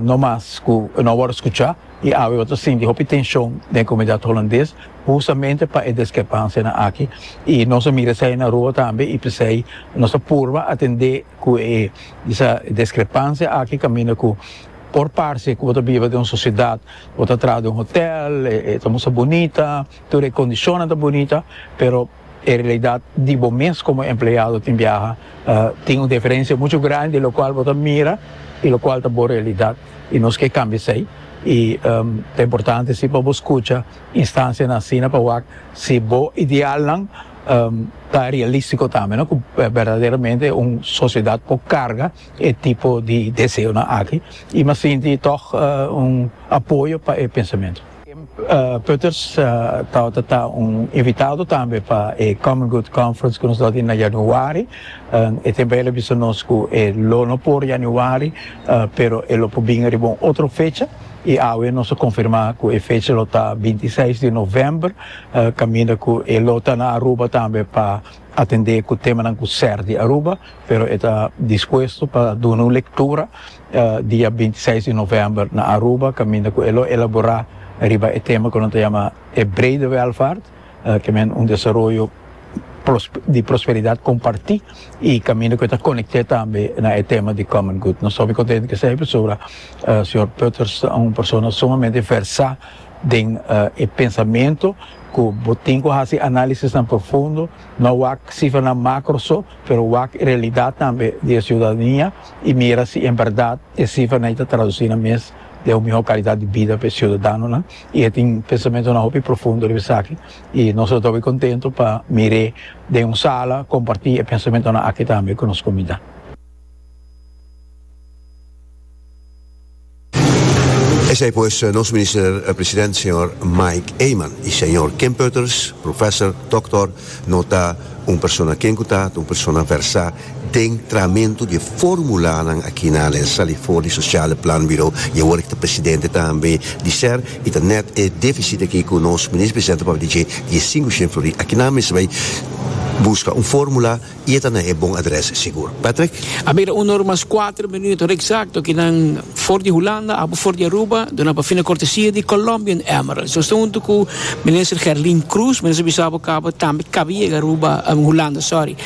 no mas ku e no a wòrdu skuchá i awe bo ta sinti hopi tenshon den e komunidat Hulandes Hustamente pa e deskerpansianan aki i nos a mira esei na rua tambe i p'esei nos ta purba atendé ku e disa deskerpansia aki kaminda ku por parse ku bo ta biba den un sosiedat bo ta traha den un hotèl e ta musta bunita tur e kondishonnan ta bunita pero e realidat di bo mes komo empleado tin biaha tin un diferensia muchu grandi di lokual bo ta mira i lokual ta bo realidat i nos ke kambia esei i ta importante si pa bo skucha Instancianan asina pa wak si bo idealnan ta realistico tambe no, cu berdaderamente un sociedad por carga e tipo di deseonan aki y mi a sinti toch un apoyo pa e pensamento. Kim Putters tabata ta un invitado tambe pa e Common Good Conference cu nos lo tin na Januari. E tempo ey el a bisa nos cu e lo no por Januari pero e lo por bin riba un otro fecha. I awe nos a konfirmá ku e fecha lo ta binti seis di novèmber, kaminda ku e lo ta na Aruba tambe pa atendé ku temanan ku ser di Aruba, pero e ta dispuesto pa duna un lektura dia binti seis di novèmber na Aruba kaminda ku e lo elaborá riba e tema ku nan ta yama e brede welvaart. Kimen un desaroyo di prosperidat kompartí i kaminda ku e ta konekté tambe na e tema di common good. Nos ta hopi kontentu ku esei e persona, señor Peuters ta un persona sumamente versá den e pensamentu ku bo tin ku hasi análisisnan profundo, no wak sifranan makro so, pero wak e realidat tambe di e siudadania i mira si en bèrdat e sifranan ei ta tradusí na mes den un mihó kalidat di bida pa e siudadanonan i e tin pensamentunan hopi profundo riba esaki i nos ta toki kontentu pa mir'é den un sala kompartí e pensamentunan aki tambe ku nos komunidat. Esei pues nos Minister President señor Mike Eman i señor Kim Putters, Professor, Doktor, no ta un persona ken ku ta ta un persona versá. den tramentu di e formulanan akinan e sali for di Sociale Planbureau i awor e ki ta presidente tambe di ser i ta nèt e defisit aki ku nos Minister Presidente papia di dje di e sinku shen flori akinan mes ta bai buska un formula i e ta na e bon adrès sigur. Patrick. A mira uno ora mas kuater minuto ora eksakto kinan for di Hulanda abo for di Aruba duna pa fina kortesia di Colombian Emeralds. Nos ta huntu ku Minister Gerlin Croes, mi ta bisa bo kaba tambe kaba yega Aruba, Hulanda, sorry.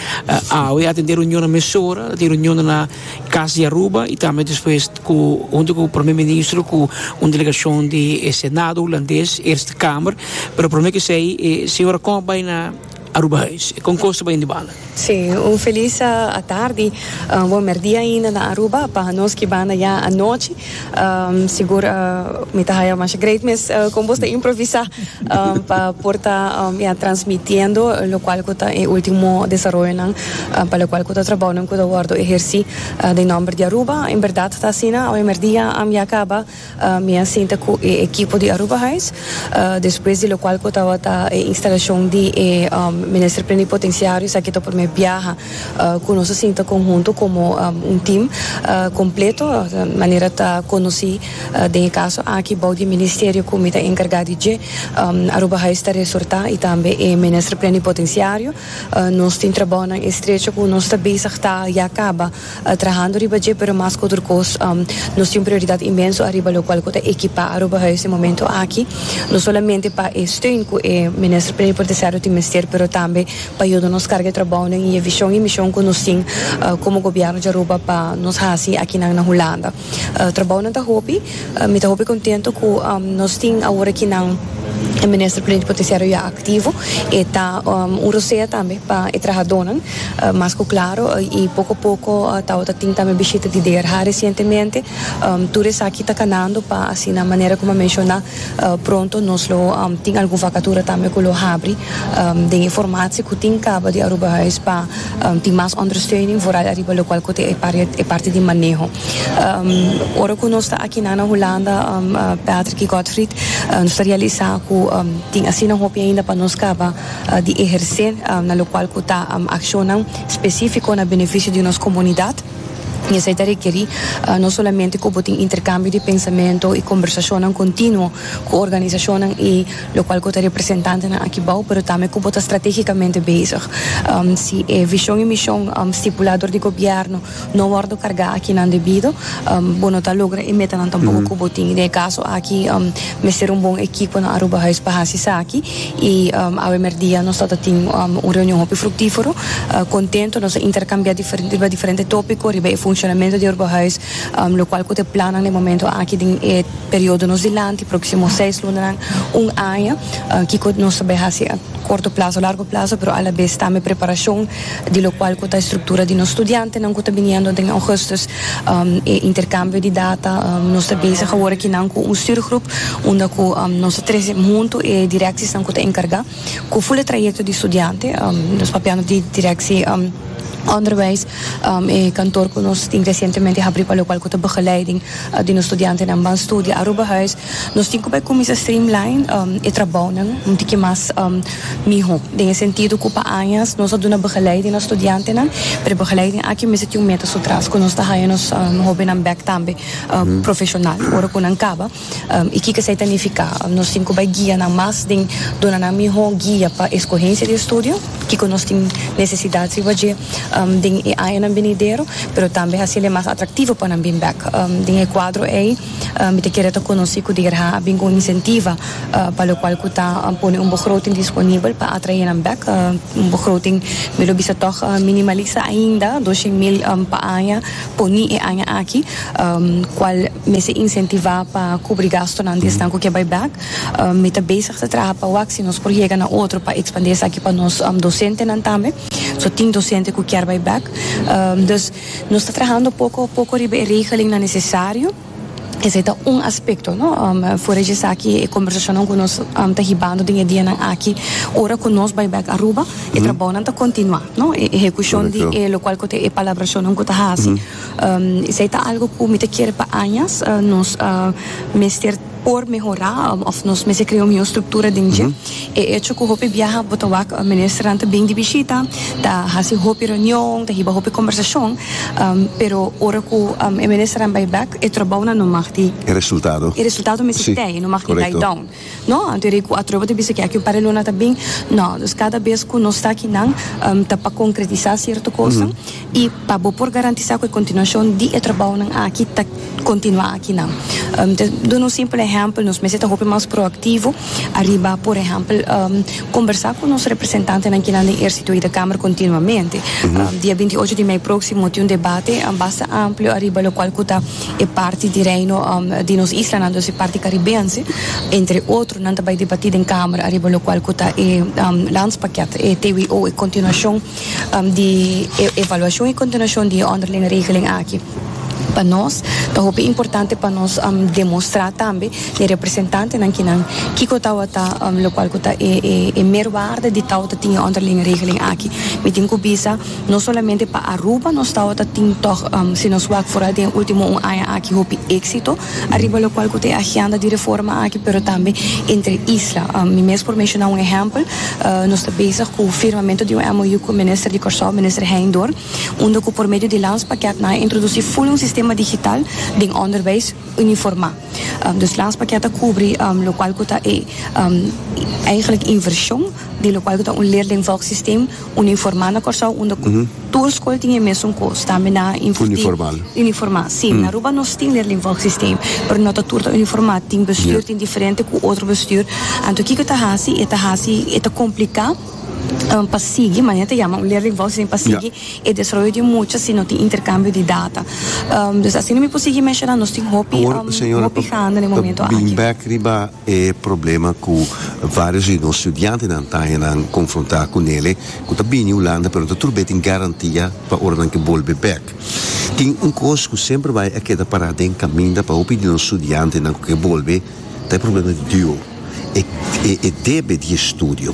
Awe a tende reunionnan mesora, ta tin reunionnan na Kas di Aruba i tambe despues ku huntu ku Prome Ministro ku un delegashon di e Senado Hulandes, Eerste Kamer, pero prome kesei e señora kon a bai na Aruba Huis? E kon kos ta bai den di banda? Sí, un felis atardi, bon merdia ainda na Aruba pa nos ki banda ya anochi. Um, sigur uh, mi ta haya masha great mes uh, con vos te improvisa um, pa por ta um, ya transmitiendo lo cual cu ta e ultimo desarrollo nan uh, pa lo cual cu ta trabajo nan cu ta wordo ejerci uh, de nombre de Aruba en verdad ta sina hoy merdia am ya acaba uh, mi a sinta cu e equipo de Aruba Huis uh, después de lo cual cu ta wata e instalacion de e um, minister plenipotenciario sa que to primer viaja ku nos a sinta konhuntu komo un tim kompleto manera ta konosí den e kaso aki bou di e ministerio ku mi ta enkargá di dje Aruba Hais ta resortá i tambe e Minister Plenipotensiario nos tin trabounan estrecho ku nos ta bezig ta ya kaba trahando riba dje pero mas ku tur kos nos tin un prioridat inmenso ariba lokual ku ta ekipá Aruba Hais den e momento aki no solamente pa e steun ku e Minister Plenipotensiario tin mester pero tambe pa yuda nos carga e trabounan y e vision y mision cu nos tin como Gobierno dja Aruba pa nos haci akinan na Hulanda. Trabounan ta hopi, mi ta hopi contento cu nos tin awor aki nan e Minister Plenipotenciario ya activo, e ta un rosea tambe pa e trahadonan, mas cu claro y poco a poco tawo ta tin tambe bishita di DRH recientemente, tur esaki ta canando pa asina manera como a menciona. Pronto nos lo tin algun vakatura tambe ku lo habri den e formatie ku tin kaba di Aruba Huis pa tin mas ondersteuning vooral ariba lokual ku ta e parti di maneho. Ora ku nos ta akinan na Hulanda Patrick i Godfried nos ta realisa ku tin asina hopi ainda pa nos kaba di ehersé na lokual ku ta akshonnan spesífiko na benefisio di nos komunidat. I esei ta rekerí no solamente ku bo tin interkambio di pensamentu i kombersashonnan kontinuo ku organisashonnan i lokual ku ta representantenan aki bou, pero tambe ku bo ta stratégikamente bezig. Si e vishon i mishon stipulá dor di gobièrnu no wòrdu kargá akinan debido, bo no ta logra e metanan tampoko ku bo tin. Den e kaso aki mester un bon ekipo na Aruba Huis pa hasi esaki. I awe merdia nos tabata tin un reunion hopi fruktífero, kontento, nos a interkambiá riba diferente tópiko riba e funshonamentu di Urbahuis, lokual ku ta e plannan den momentu aki den e periodo nos dilanti, próksimo seis lunanan, un aña, kiko nos ta bai hasi a korto plazo, largo plazo, pero alabes tambe preparashon di lokual ku ta e struktura di nos studiantenan ku ta biniendo den Augustus, e interkambio di data, nos ta bezig awor aki nan ku un stürgroep unda ku nos ta trese huntu e direksisnan ku ta enkargá ku ful e trayekto di studiante, nos papiando di direksi onderwijs, e kantoor ku nos tin resientemente habrí pa lokual ku ta begeleiding di nos studiantenan ban studia Aruba huis. Nos tin ku bai kuminsá streamline e trabounan un tiki mas mihó. Den e sentido ku pa añas nos a duna begeleiding na studiantenan, pero e begeleiding aki mester tin un meta su tras ku nos ta haya nos hóbennan bèk tambe profeshonal ora ku nan kaba i kiko esei ta nifiká. Nos tin ku bai guia nan mas den duna nan mihó guia pa eskohensia di estudio, kiko nos tin nesesidat riba dje den e añanan binidero, pero tambe hasiel e mas atraktivo pa nan bin bèk. Den e kuadro ei. Mi ta kere ta konosí ku DIGRHA a bin ku un insentiva pa lokual ku ta pone un begroting disponibel pa atraé nan bèk. Un begroting mi lo bisa tòg minimalista ainda, dos shen mil pa aña, poni e aña aki, kual mester insentivá pa kubri gastunan di esnan ku ke bai bèk. Mi ta bezig ta traha pa wak si nos por yega na otro pa ekspandí esaki pa nos dosentenan tambe. So tin dosente ku kier bai bèk. Dus. Nos ta trahando poko a poko riba e regelingnan nesesario. Esei ta un aspekto, no. Fora di esaki e kombersashonnan ku nos ta hibando den e dianan aki ora ku nos bai bèk Aruba, e trabounan ta kontinuá, no. E ehekushon di e lokual ku ta e palabrashonnan ku ta hasi esei ta algu ku mi ta kere pa añas nos mester. por mehorá òf nos mester krea un mihó struktura den dje. E echo ku hopi biaha bo ta wak ministernan ta bini di bishita, ta hasi hopi reunion, ta hiba hopi kòmbersashon, pero ora ku e ministernan bai bèk, e tròbounan no mag di. E resultado. E resultado no mester tei, no mag di die down. Nò, anto e rei ku atroba ta bisa ke aki un par di luna ta bin. Nò, dus kada bes ku nos takinan ta pa konkretisá sierto kosnan, I pa bo por garantisá ku e kontinuashon di e trabounan aki ta kontinuá aki nan. Ta duna un simpel ehèmpel, nos mester ta hopi mas proaktivo ariba por ehèmpel kombersá ku nos representantenan kinan den Ersito i den Kamer kontinuamente. Dia binti ocho di mei próksimo tin un debate basta amplio ariba lokual ku ta e parti di reino di nos islanan dòs e parti karibense entre otro nan ta bai debatí den Kamer ariba lokual ku ta e landspakket, e TWO, e kontinuashon. di e evaluashon i kontinuashon di e ònderlinge regeling aki. Pa nos ta hopi importante pa nos demostrá tambe na e representantenan kinan kiko tabata lokual ku ta e e e merwaarde di tabata tin e ònderlinge regeling aki. Mi tin ku bisa no solamente pa Aruba nos tabata tin tòg si nos wak for al den e último un aña aki hopi éksito. Ariba lokual ku ta e agenda di reforma aki pero tambe entre isla. Mi mes por menshona un ehèmpel, nos ta bezig ku firmamentu di un MOU ku minister di Kòrsou, minister Hein Dorp, unda ku por medio di Landspakket nan a introdusí ful un sistema digital den ònderbèis uniformá. Dus Landspakket ta kubri lokual ku ta e, èigelik, invershon. di lokual ku ta un leerlingvolk sistem uniformá na Kòrsou unda ku tur skol tin e mesun kos tambe na uniformá uniformá si na Aruba nos tin leerlingvolk sistem pero no ta tur ta uniformá tin bestür tin diferente ku otro bestür anto kiko ta hasi e ta hasi e ta kompliká pa sigui manera ta yama un leerlingvolk sistem pa sigui e desaroyo di mucha si no tin interkambio di data dus asina mi por sigui menshoná nos tin hopi hopi gana den e momento aki. E problema ku vários di nos studiantenan ta haña nan konfrontá ku nele, ku ta bini Hulanda pero no ta tur be tin garantia pa ora nan ke bolbe bèk. Tin un kos ku semper bai a keda pará den kaminda pa hopi di nos studiantenan ku ke bolbe, ta e problema di deo, e e debe di e studio.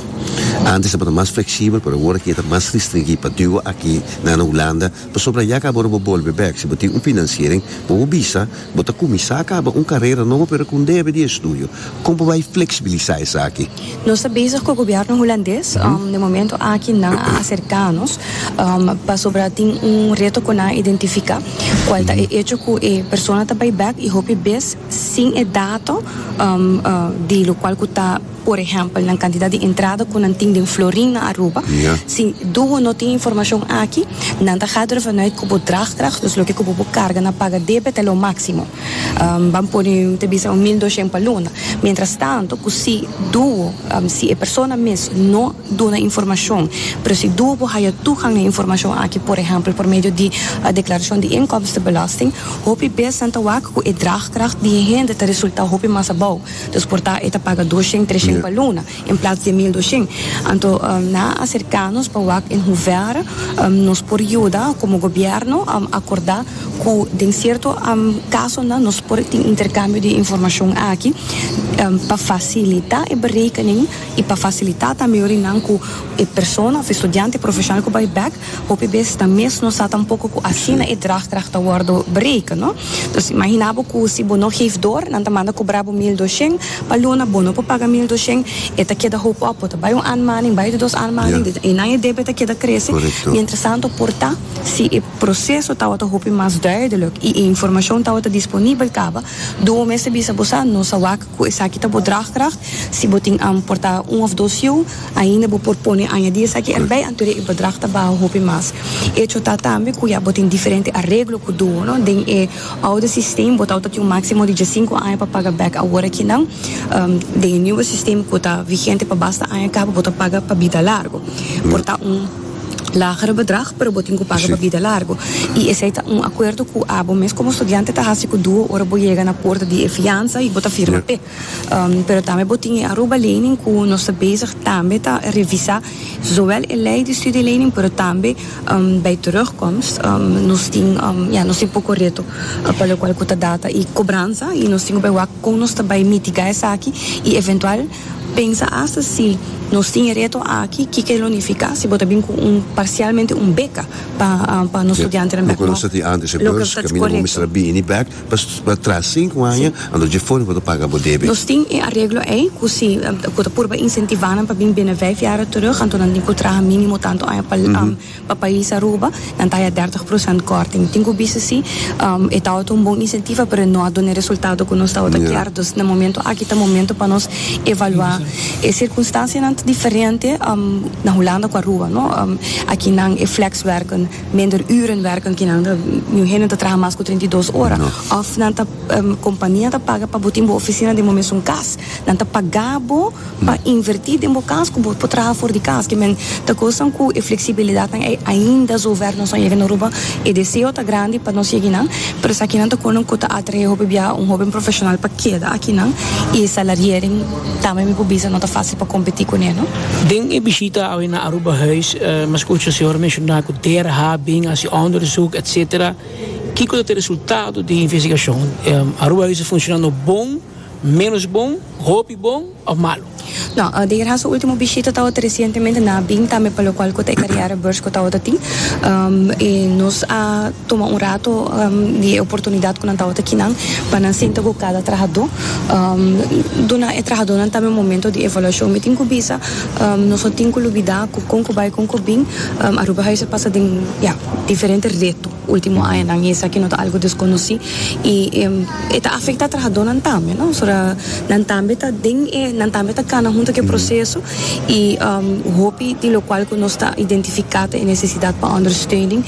Antes tabata mas fleksibel pero awor aki e ta mas ristringí pa deo aki na Hulanda, pasobra ya ka bo ora bo bolbe bèk, si bo tin un finansiering bo a bisa, Bo ta kuminsá kaba un karera nobo pero ku un debe di estudio. Kon bo bai fleksibilisá esaki? Nos ta bezig ku gobièrnu hulandes. Den momentu aki nan a aserká nos pasobra tin un reto ku nan a identifiká kual ta e echo ku e persona ta bai bèk i hopi bes sin e dato di lokual ku ta Por ehèmpel, nan kantidat di entrada ku nan tin den Florin na Aruba. Si duo no tin informashon aki, nan ta hadra vanuit ku bo dragkrag, dus loke ku bo por karga na paga debet el lo máksimo. Ban pone, mi ta bisa, un mil doshen pa luna. Mientrastanto, ku si duo, si e persona mes no duna informashon, pero si duo por haya tugang na informashon aki, por ehèmpel, por medio di deklarashon di inkomstenbelasting, hopi bes nan ta wak ku e dragkrag di e hende ta resultá hopi mas abou. Nos por ta e ta paga dos shing, tres shing pa luna, en plats di e mil dos shing. Anto, na aserká nos pa wak en huvèr, nos por yuda komo gobièrnu akordá ku den sierto kasonan nos por tin interkambio di informashon aki pa fasilitá e berekening i pa fasilitá tambe yorinan ku e persona òf e studiante profeshonal ku bai bèk Hopi bes ta mes no sa tampoco cu asina e draagkracht ta wordo bereken, no. Dus imagina bo cu si bo no geef door, nan ta manda cobra bo mil doshen pa luna, bo no por paga mil doshen, e ta keda hoop op, bo ta bay un aanmaning, bay di dos aanmaning, di enan e debet ta keda crece, mientrasanto por ta si e proceso tawata hopi mas duidelijk y e informacion tawata disponibel caba, doe mes ta bisa bo sa, no sa wak. Cu esaki ta bo draagkracht. Si bo tin am por ta un of dos jou, ainda bo por pone añadi esaki erbij, anto de e bedrag ta baha hopi mas. Echo ta tambe cu ya bo tin diferente areglo cu duo, no? Den e oude systeem bo ta outa tin un maximo di diescinco aña pa paga bek awor akinan. Den e nieuwe systeem cu ta vigente pa basta aña cabo bo ta paga pa bida largo. Por ta un. lager bedrag pero bo tin cu paga pa bida largo y esey ta un acuerdo cu abo mes como estudiante ta haci cu duo ora bo yega na puerta di e fianza y bo ta firma p'e pero tambe bo tin e Aruba lening cu nos ta bezig tambe ta revisa zowel e ley di studie lening pero tambe bij terugkomst nos tin ya nos tin poco reto pa locual cu ta data y cobransa y nos tin cu bay wak con nos ta bay mitiga esaki y eventual. Pensa asta si nos tin e reto aki, kiko e lo nifiká si bo ta bin ku un parsialmente un beka pa pa nos studiantenan bèk nò? Loke nos ta tin ántes e beurs, kaminda bo mester a bini bèk pa tras sinku aña, anto dje for bo ta paga bo debe. Nos tin e areglo ei ku si ku ta purba insentivá nan pa bin bini vèf yara terug, anto nan tin ku traha mínimo tantu aña pa. Pa pais Aruba, nan ta haya dèrtig prosènt kòrting. Tin ku bisa si, e tabata un bon insentiva, pero e no a duna e resultado ku nos tabata kier. Dus na momentu aki ta momentu pa nos evaluá e sirkunstansianan ta diferente na Hulanda ku Aruba, no? Aki nan e flèkswèrken, minder ür'en wèrken ki nan ta niun hende no ta traha mas ku treinta i dos ora. Òf nan ta kompania ta paga pa bo tin bo ofisina den bo mes un kas. Nan ta pagá bo. Pa invertí den bo kas ku bo por traha for di kas. Ki men ta kosnan ku e fleksibilidatnan ei ainda su oferta nos no yega na Aruba. E deseo ta grandi pa nos yeginan, pero esakinan ta konan ku ta atraé hopi biaha un hóben profeshonal pa keda akinan i e salariering tambe mi por bisa no ta fásil pa kompetí kuné, no. Den e bishita awe na Aruba Huis, mi a skucha señora menshoná ku DERH a bin hasi òndersuk, etsetera. Kiko ta e resultado di e investigashon? Aruba Huis a funshoná no bon? Menos bon, hopi bon of malu? No, den Irán su ultimo bishita tawato resientemente nan a bin tambe pa lokual ku ta e kariera beurs ku tawato tin. E nos a tuma un rato di e oportunidat ku nan tawato ki nan pa nan sinta ku kada trahadó. Duna e trahadónan tambe un momento di evaluashon. Mi tin ku bisa nos no tin ku lubidá ku kon ku bai kon ku bin Aruba Huis a pasa den, ya, diferente reto. Ultimo añanan i esaki no ta algu deskonosí i e ta afektá trahadónan tambe, no? So ta nan tambe ta den e nan tambe ta kana huntu ku e proseso i hopi di lokual ku nos ta identifiká ta e nesesidat pa ondersteuning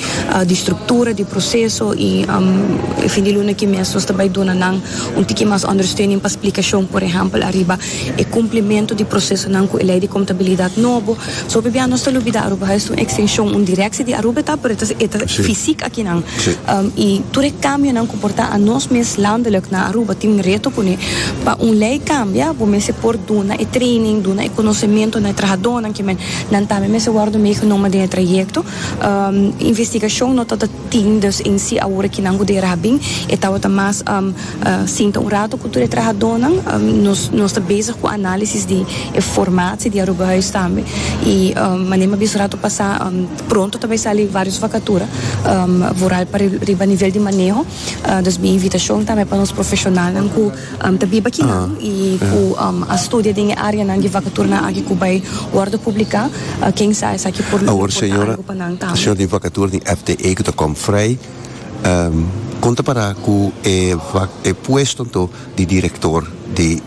di struktura di proseso i e fin di luna aki mes nos ta bai duna nan un tiki mas ondersteuning pa splikashon por ehèmpel ariba e kumplimentu di prosesonan ku e Lei di Kontabilidat nobo. Sope bia nos ta lubida Aruba ha es un ekstenshon, un direkse di Aruba e ta, pero e ta e ta fisik akinan. I tur e kambionan ku por ta a nos mes landelik na Aruba tin reto kuné. Pa un lei kambia bo mester por duna e training, duna e konosementu na e trahadónan ke men nan tambe mester wòrdu meegenomen den e trayekto. Investigashon no tabata tin, dus en si awor e kinan ku dera a bin e tabata mas. Sinta un rato ku tur e trahadónan. Nos ta bezig ku análisis di e formatio di Aruba Huis tambe. I mané mi a bisa rato pasá, pronto ta bai sali vários vakatura, vooral pa riba nivel di maneho. Dus mi invitashon tambe pa nos profeshonalnan ku ta biba kinan i ku a studia den e áreanan di vakaturanan aki ku bai wòrdu publiká, ken sa esaki por porta algu pa nan tambe. Kon ta para ku e wak e puesto anto di direktor di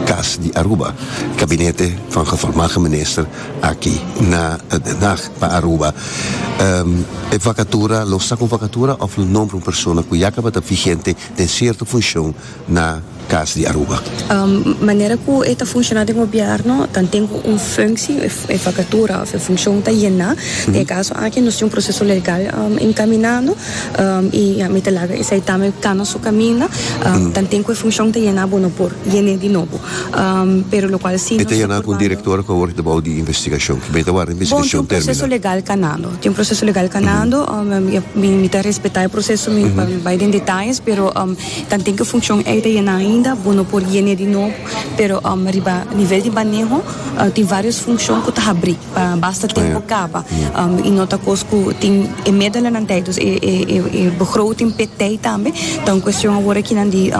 kas di Aruba? Gabinete van gevolmagde minister aki na Den Haag pa Aruba. E vakatura lo sa ku un vakatura òf lo nombra un persona ku ya tabata vigente den sierto funshon. na cas di Aruba. Manera cu e ta funciona den gobierno ta anten cu un funcci, e vacatura of e funcion ta yena. Den e caso aki nos tin un proceso legal encaminando y ya mi ta laga e certamen cana su caminda. Ta anten cu e funcion ta yena bo no por yen'e di nobo. Pero locual si nos ta purba no. E ta yena cu un director of awor ta bao di investigacion? Kiben ta ward'e investigacion termina? Bon, tin un proceso legal canando. Tin un proceso legal canando. Mi ta respeta e proceso mi no bai den detalles pero. Tan tin cu funcion ey ta yena ainda, bo no por yene di nobo, pero riba nivel di maneho tin varios funcion cu ta habri pa basta tempo caba y no ta cos cu tin e medelanan tey dus e begroting pe tey tambe, ta un cuestion awor aki nan di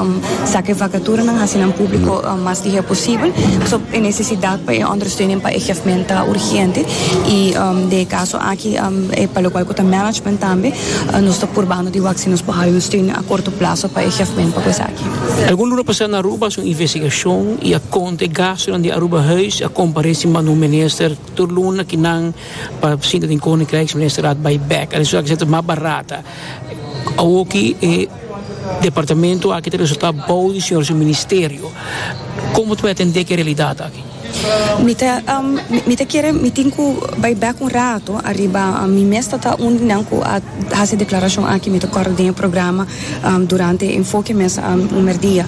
saca e vacaturanan haci nan publico mas di hea posibel, so e necesidad pa e ondersteuning pa e gevment ta urgente y den e caso aki e pa locual cu ta management tambe. nos ta purbando di wak si nos por haña un steun a korto plaso pa e hjfment pa ku esaki. Algun luna pasá na Aruba so investigashon i a kont e gastunan di Aruba Huis a komparé sin banda un minister tur luna ki nan pa sinta den Koninkrijksministerraad bai bèk. Al resultá kinsentro mas barata. Awoki e departamento aki ta resultá bou di señor su ministerio. Komo ta por atendé ku e realidat aki? Mi ta mi ta kere mi tin ku bai bek un rato ariba mi mes ta ta un di nan ku a hasi e deklarashon aki mi ta kòrda den e programa durante e enfoke mes un mèrdia.